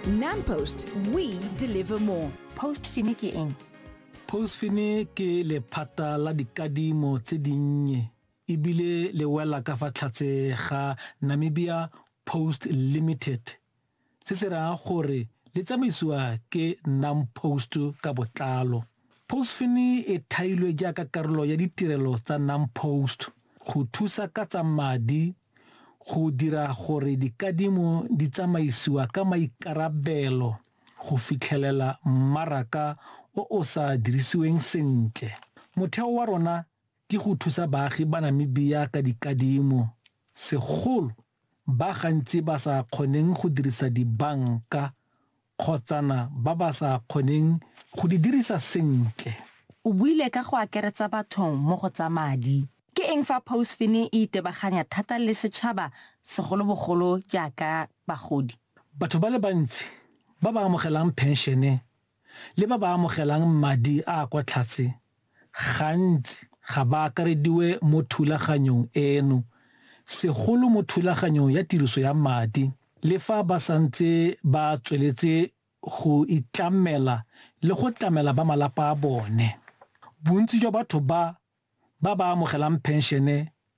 NamPost, we deliver more. Postfini ke eng? Postfini ke lephata la dikadimo tse dinnye ebile le wela ka fa tlhatse ga Namibia Post Limited. Se se raya gore le tsamaisiwa ke NamPost ka botlalo. Postfini e thailwe jaaka karolo ya ditirelo tsa NamPost go thusa ka tsa madi go dira gore dikadimo di tsamaisiwa ka maikarabelo go fitlhelela mmaraka o o sa dirisiweng sentle. Motheo wa rona ke go thusa baagi ba Namibia ka dikadimo, segolo ba gantsi ba sa kgoneng go dirisa dibanka kgotsana ba ba sa kgoneng go di dirisa sentle. O buile ka go akeretsa batho mo go tsa madi. Ke eng fa Pousfin e itebaganya thata le setšhaba segolobogolo jaaka bagodi? Batho ba le bantsi ba ba amogelang phenšene le ba ba amogelang madi a a kwa tlhatse gantsi ga ba akarediwe mo thulaganyong eno, segolo mo thulaganyong ya tiriso ya madi, le fa ba santse ba tsweletse go itlamela le go tlamela ba malapa a bone. Bontsi jwa batho ba ba ba amogelang phenšene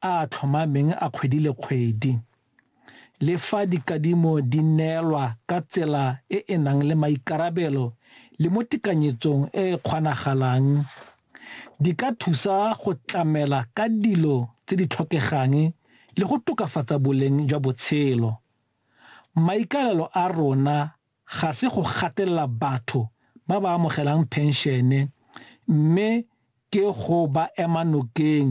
a a tlhomameng a kgwedi le kgwedi. Le fa dikadimo di neelwa ka tsela e e nang le maikarabelo le mo tekanyetsong e e kgonagalang, di ka thusa go tlamela ka dilo tse di tlhokegang le go tokafatsa boleng jwa botshelo. Maikaelelo a rona ga se go gatelela batho ba ba amogelang phenšene mme ke go ba ema nokeng